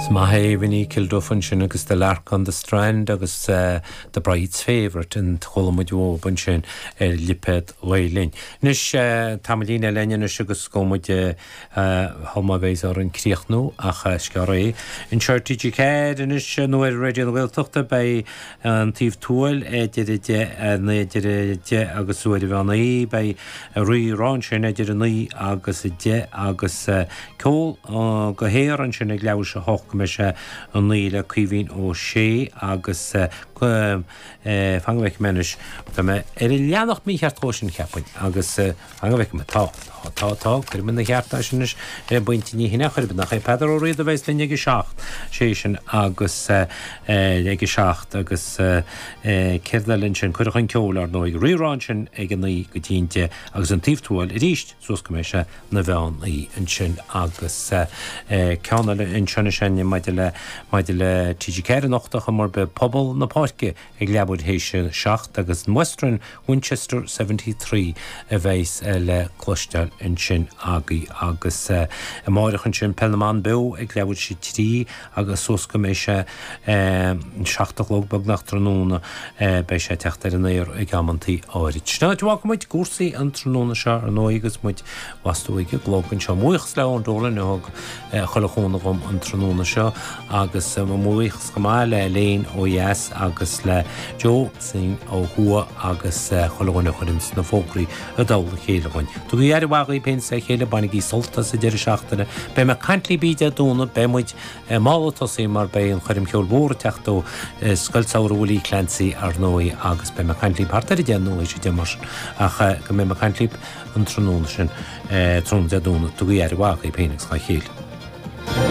Is maith é Vinny Kilduff ansin agus The Lark on the Strand agus The Bride's Favourite a chuala muid uaidh ansin ar lipéad Ghael Linn. Anois, tamaillín eile a'inn anois agus gabhfaidh muid shul má bheas orainn críochnú ach is gearr é. Anseo ar TG4 anois nó ar Raidió na Gaeltachta beidh. An Taobh Tuathail idir a deich, idir a deich agus uair an mheán oíche beidh Rírá ansin idir a naoi agus a deich agus ceol go haer ansin ag leathuair théis a hocht go mbeidh sé a naoi le Caoimhín Ó Sé agus fan go bhfeice mé anois tá mé ar an leathanach mícheart dhó sin cheapfainn agus Fan go bhfeice mé atá? Tá, atá, atá, cuirim ina cheart é sin anois le baint Ní hEithir, nach cuirim? Nach é Peadar Ó Riada a bheas linn ag a seacht, sé sin agus eh ag a seacht agus eh céard eile ansin, Cuireadh chun Ceoil ar ndóigh, Rírá ansin ag a naoi go dtí an deich agus An Taobh Tuathail arís suas go mbeidh sé ina mheán oíche ansin agus eh ceann eile ansin is é maidir le, maidir le TG4 anocht ach an mar beidh pobal na páirce, ag leathuair théis 7 agus an Western Winchester 73 a bheas le cloisteáil ansin agaí agus amáireach ansin Peil na mBan Beo ag leathuair théis 3 agus suas go mbeidh sé 7 a chlog beagnach tráthnóna beidh sé ag teacht ar an aer ag amanntaí áirid. Sin an áit a bhfágfaidh muid cúrsaí an tráthnóna seo ar ndóigh agus muid i bhfastó ag an gclog anseo. Buíochas le Eoin Dolan a thug chuile chúnamh dhom an tráthnóna seo agus mo bhuíochas chomh maith le Elaine ó dheas agus le Joe Singh ó thuaidh agus chuile dhuine a chuireanns na fógraí i dtoll a chéile dhuinn. Tugaigí aire mhaith dhaoibh féin is dá chéile, bainigí sult as an deireadh seachtaine. Beidh mé ag caint libh Dé Domhnaigh, beidh muid mall ag tosaí mar beidh an choirm cheoil mhór ag teacht ó Scoil Samhraidh Willie Clancy ar ndóigh agus beidh mé ag caint libh thart ar a deich nó tar éis a deich mar sin ach go mbeidh mé ag caint libh an tráthnóna sin, tráthnóna Dé Domhnaigh, tugaigí aire mhaith dhaoibh féin agus dhá chéile.